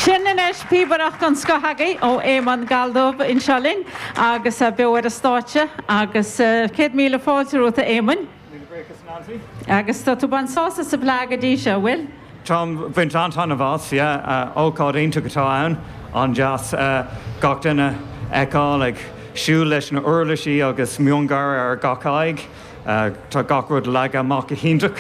Sin anois píobaireacht den scoth agaibh ó Éamonn Galldubh anseo linn beo ar an stáitse agus céad míle fáilte romhat a Éamoinn. Agus tá tú baint sásamh sa bhFleadh go dtí seo, an bhfuil? Táim baint an-taitneamh as, yeah. Ócáid iontach atá ann, an-deas gach duine fheiceáil ag siúl leis na uirlisí agus miongháire ar gach aghaidh. Tá gach rud leagtha amach go hiontach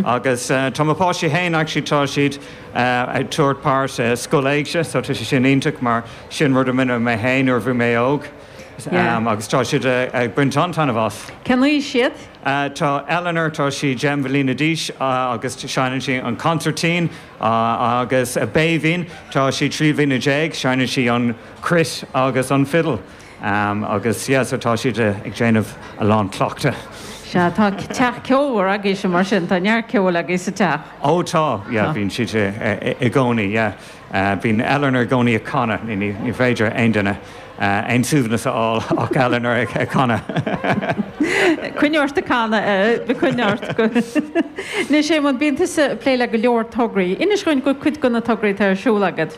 agus tá mo pháistí féin actually tá siad ag tabhairt páirte i Scoil Éigse so tá sé sin iontach mar sin rud a rinne mé féin nuair a bhí mé óg agus tá siad ag baint an-taitneamh as. Cén aois iad? Tá Eleanor, tá sí deich mbliana d'aois agus seinneann sí an consairtín agus Béibhinn, tá sí trí bliana déag, seinneann sí an chruit agus an fiddle. Am agus yeah so tá siad ag déanamh a lán cleachta. Sea, tá teach ceolmhar agaibhse mar sin, tá neart ceoil agaibh sa teach. Ó tá, yeah bíonn siad i gcónaí yeah, bíonn Eleanor i gcónaí ag canadh, ní féidir aon duine aon suaimhneas a fháil ach Eleanor ag canadh. Coinnigh ort ag canadh Ellie, coinnigh ort. Anois Éamonn, bíonn tusa ag plé le go leor tograí, inis dhúinn faoi chuid de na tograí atá ar siúl agat.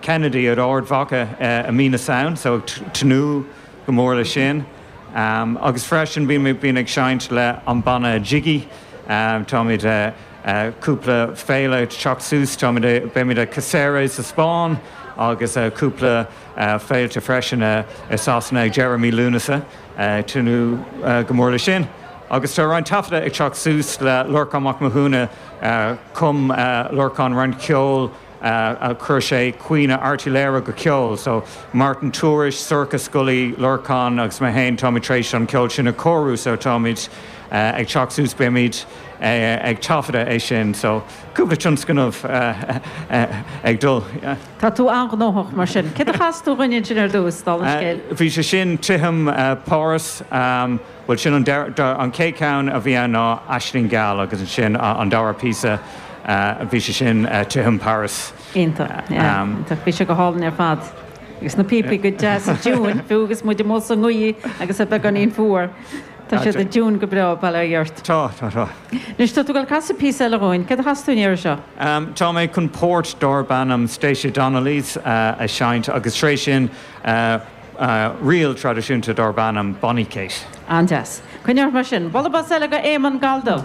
Kennedy in Ard Mhacha i mí na Samhna so ag tnúth go mór le sin agus freisin bím ag seinnt le an banna Jiggy táimid cúpla féile teacht suas táimid beimid ag Cáceres sa Spáinn agus cúpla féilte freisin i Sasana ag deireadh mí Lúnasa ag tnúth go mór le sin agus tá roinnt taifeadta ag teacht suas le Lorcán Mac Mathúna chum Lorcán roinnt ceol Chuir sé Caoineadh Airt Uí Laoghaire go ceol so, Martin Tourish, Sorcha Scully, Lorcán agus mé féin, táimid tar éis an ceol sin a chóiriú so táimid ag teacht suas, beimid ag taifeadadh é sin so cúpla tionscnamh ag dul. Tá tú an-ghnóthach mar sin. Céard a chas tú dhúinn ansin ar dtús, dála an scéil? Bhí sé sin, Titim Pháras. Bhuel, sin an, an chéad cheann a bhí ann ná Aisling Gheal agus ansin an dara píosa, bhí sé sin Titim Pháras. Iontach, iontach, bhí sé go hálainn ar fad agus na píopaí go deas i dtiúin fiú agus muid amuigh sa ngaoth agus é beagáinín fuar, tá siad i dtiúin go breá, bail ó Dhia ort. Tá, tá, tá. Anois tá tú ag dul casadh píosa eile dhúinn, céard a chasfas tú an iarraidh seo? Tá mé chun port darb ainm Stacey Donnelly's a sheinnt agus tar éis sin, ríl traidisiúnta darb ainm Bonny Kate. An-deas. Coinnigh ort mar sin. Bualadh bos eile go Éamonn Galldubh.